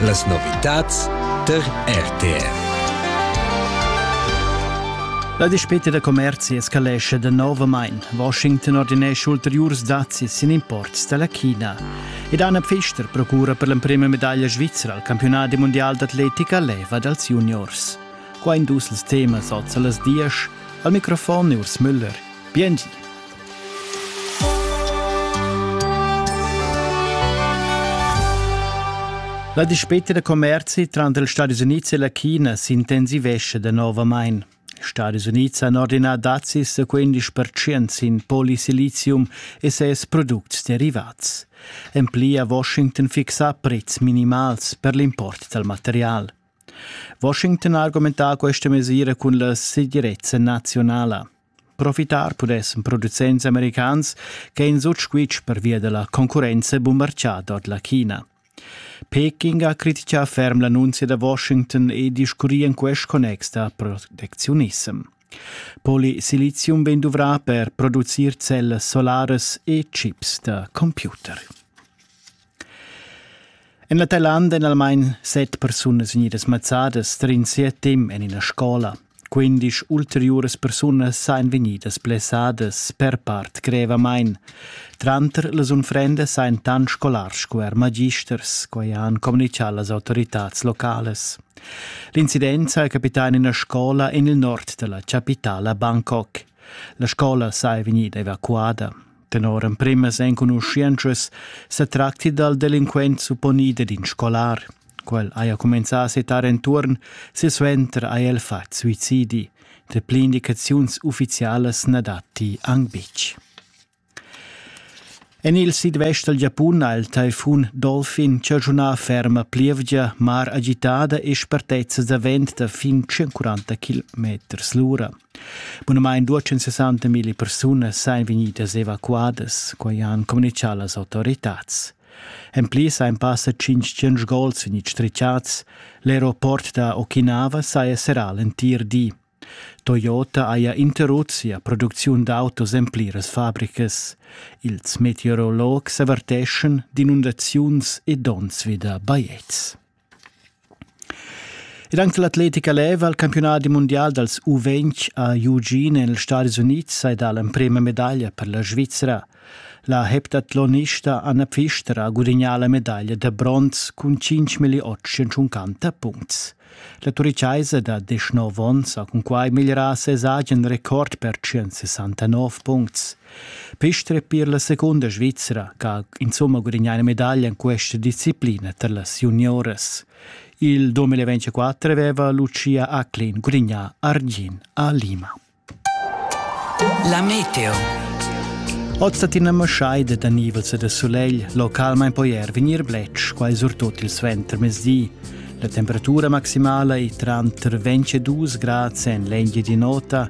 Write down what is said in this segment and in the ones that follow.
Las novitads tar RTR. La dispeta da commerzi escalesce da novamain. Washington ordinesce ulteriurs dazi sin imports da la China. Ed Anna Pfister procura per l'emprima medaglia svizra al campionat di mondial d'atletica leva dals juniors. Qua in dus temas oz a las dies al microfon Urs Müller. Bienvenue. La dispeta da commerzi tranter ils Stati Unids e la China s'intensivesce danovamain. Ils Stati Unids han ordinà dazis da 15% sin polysilizium e ses products derivats. En pli ha Washington fixà prezs minimals per l'import dal material. Washington ha argumentà questa mesira cun la segirezza nazionala. Profitar pudessan producents americans ch'ein sut squitsch pervia dalla concurrenza bumbartgada ord la China. Peking ha critichà ferm l'annunzia da Washington e discurrì en quest connex da protecziunissem. Polisilizium vegn duvrà per producir cellas solaras e chips da computer. En la Thailand èn almain set persunas vegnidas mazzadas tar in siat temp en ina scola. Quindisch ulteriuras persunas sajan vegnidas blessadas per part grevamain. Tranter las unfrendas sajan tant scolars sco er magisters, quai han communitgà las autoritads localas. L'incident saja capità en ina scola en il nord da la chapitala Bangkok. La scola saja vegnida evacuada. Tenor emprimas enconuschientschas se tracti dal delinquent supponide d'in scolar. Quel haja cumenzà a setar enturn, silsuenter haja el fat suicidi. Treple indicaziuns ufficialas na datti anc betg. En il sidvest dal Giapun ha il taifun Dolphin chaschunà ferma plievgia, mar agitada e spartezzas da vent da fin 140 km l'ura. Bunamain 260 mila persunas sain vegnidas evacuadas, quai han communitgà las autoritads. En pli sain passa 500 gols in stritschats. L'aeroport da Okinawa saja serrà l'entir di. Toyota haja interrut sia producziun d'autos en pliras fabricas. Ils meteorologs averteschan d'inundaziuns e donns vi da bajetgs. Ed anche l'atletica leva al campionat mundial dals U20 a Eugene negli Stati Uniti è dà l'emprima medaglia per la Svizzera. La heptathlonista Anna Pfister ha gudagnà la medaglia da bronz cun 5.850 puncts. La turichaisa da 19 onns ha cunquai migliorà ses agen record per 169 puncts. Pistr per la secunda Svizra che ha insomma gudagnà una medaglia in questa disciplina per las junioras. Il 2024 aveva Lucia Acklin gudagnà Argin a Lima. La meteo. Ozatin maschaida da nivels e da solegl, localmain poi er vegnir bletsch, quai surtut il suentermezdi. La temperatura maximala è tranter 22 grad en l'engi di nota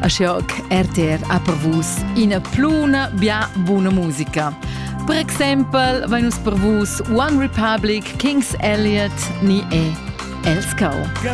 Aschia che RTR ha per vus ina pluna bia buna musica. Per exempel vein nus per vus One Republic, King's Elliot ni e Els Cao.